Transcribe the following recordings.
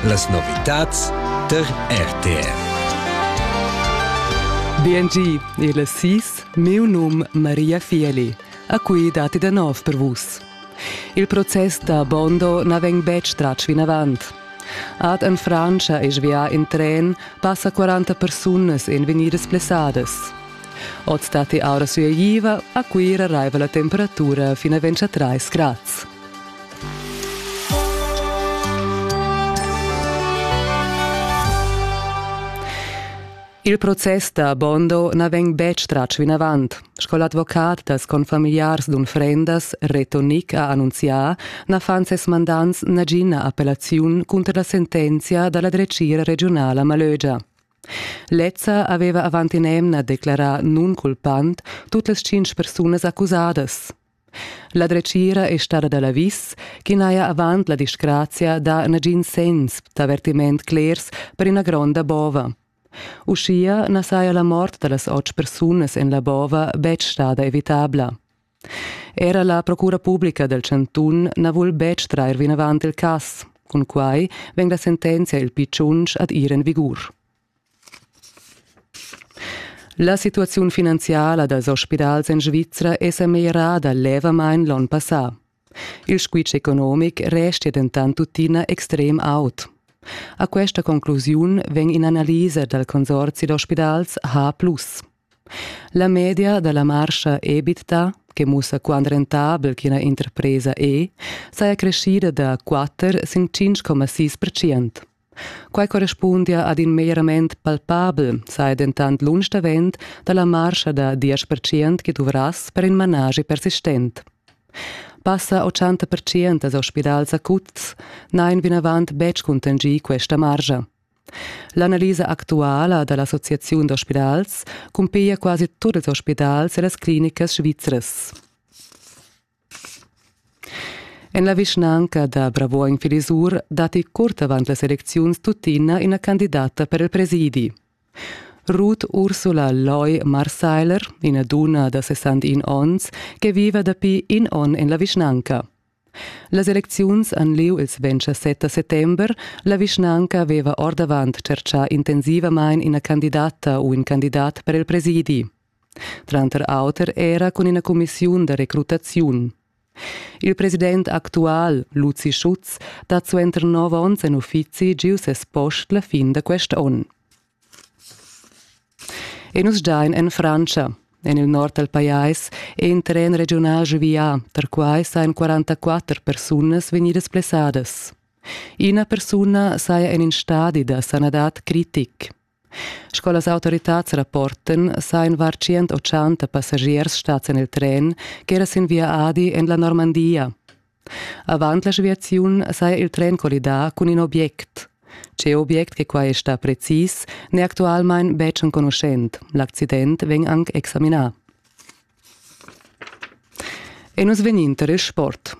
Las novitads der RTR. BNG e las sis, miu num Maria Fieli, a cui dati da nov per vus. Il process da Bondo na vegn betg tratg vinavant. Ad en Francia e svià in tren passa 40 persunas en vegnidas plessadas. Oz dati aura sueiva a Cuira raiva la temperatura fino a 23 grads. Il process da Bondo na vegn betg tratg vinavant. Sco l'advocat dals confamiliars d'unfrendas Reto Nick ha annunzià, na fan ses mandants nagina appellaziun cunter la sentenzia da la dretgira regiunala Malögia. Lezza aveva avant in'emna declarà nunculpant tut las tschintg persunas accusadas. La dretgira è stada da l'avis ch'i n'haja avant la disgrazia dà nagin senns d'avertiment clers per ina gronda bova. Uschia na saja la mort da las otg persunas en la bova betg stada evitabla. Era la procura publica dal chantun na vul betg trair vinavant il cass. Cun quai vegn la sentenzia il P5 ad ir en vigur. La situaziun finanziala dals ospidals en Svizra è sa meglierada levamain l'onn passà. Il squitsch economic restia dentant tuttina extrem aut. A questa conclusiun vegn in'analisa dal consorzi d'ospidals H. La media da la marscha EBITDA che mussa quant rentabel ch'ina interpresa è, saja creschida da 4 sin 5,6 percent. Quai correspundia ad in meglierament palpabel, saja dentant lunsch davent da la marscha da 10% che duvrass per in managi persistent. Passa 80% als ospidals acuts n'hain vinavant betg contingì questa margia. L'analisa actuala da l'Associaziun d'ospidals cumpiglia quasi tut ils ospidals e las clinicas svizras. En la vischnanca da Bravuogn Filisur datti curt avant las elecziuns tuttina ina candidata per il presidi. Ruth Ursula Loy Marseiler, ina dunna da 61 onns che viva dapi in onn en la vischnanca. Las elecziuns han lieu ils 27 settember. La vischnanca aveva ordavant tschertgà intensivamain ina candidata u in candidat per il presidi. tranter auter era cun ina cumissiun da recrutaziun. Il president actual, Luzi Schutz, dat suenter nov onns en uffizi giu ses post la fin da quest onn. E nus giain en Frantscha. En il nord dal pajais è in tren regional svià, tar quai sajan 44 persunas vegnidas blessadas. Ina persuna saja en in stadi da sanadad critic. Sco las autoritads rapporten, sajan var 180 passagiers stads en il tren ch'era sin via Adi en la Normandia. Avant la sviaziun saja il tren collidà cun in object. Tge object che quai sta precis, n'è actualmain betg enconuschent. L'accident vegn anc examinà. E nus vegninter il sport.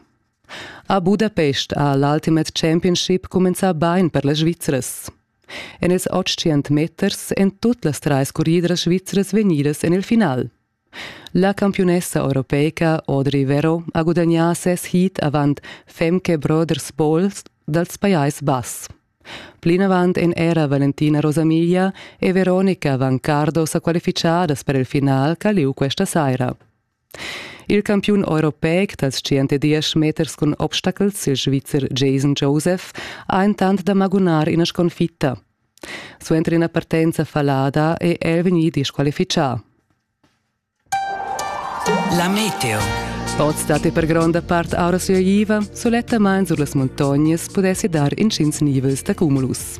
A Budapest ha l'Ultimate Championship cumenzà bain per las Svizzers. En ils otg meters èn tut las trais curridras svizras vegnidas en il final. La campiunessa europeica Audrey Vero ha gudagnà ses heat avant Femke Brothers Bowl dals Pajais Bass. Plinavant èn era Valentina Rosamiglia e Veronica Vancardo sa qualifichadas per il final ch'ha lieu questa saira. Il campiun europeic da tschient e diesch meters cun obstacels, il Svizzer Jason Joseph, ha entant da magunar ina sconfitta. Suenter ina partenza fallada è el vegnì disqualifichà. La meteo. Oz dat per gronda part aura sua iva, sulettamain sur las muntognas pudessi dar intgins nivels da cumulus.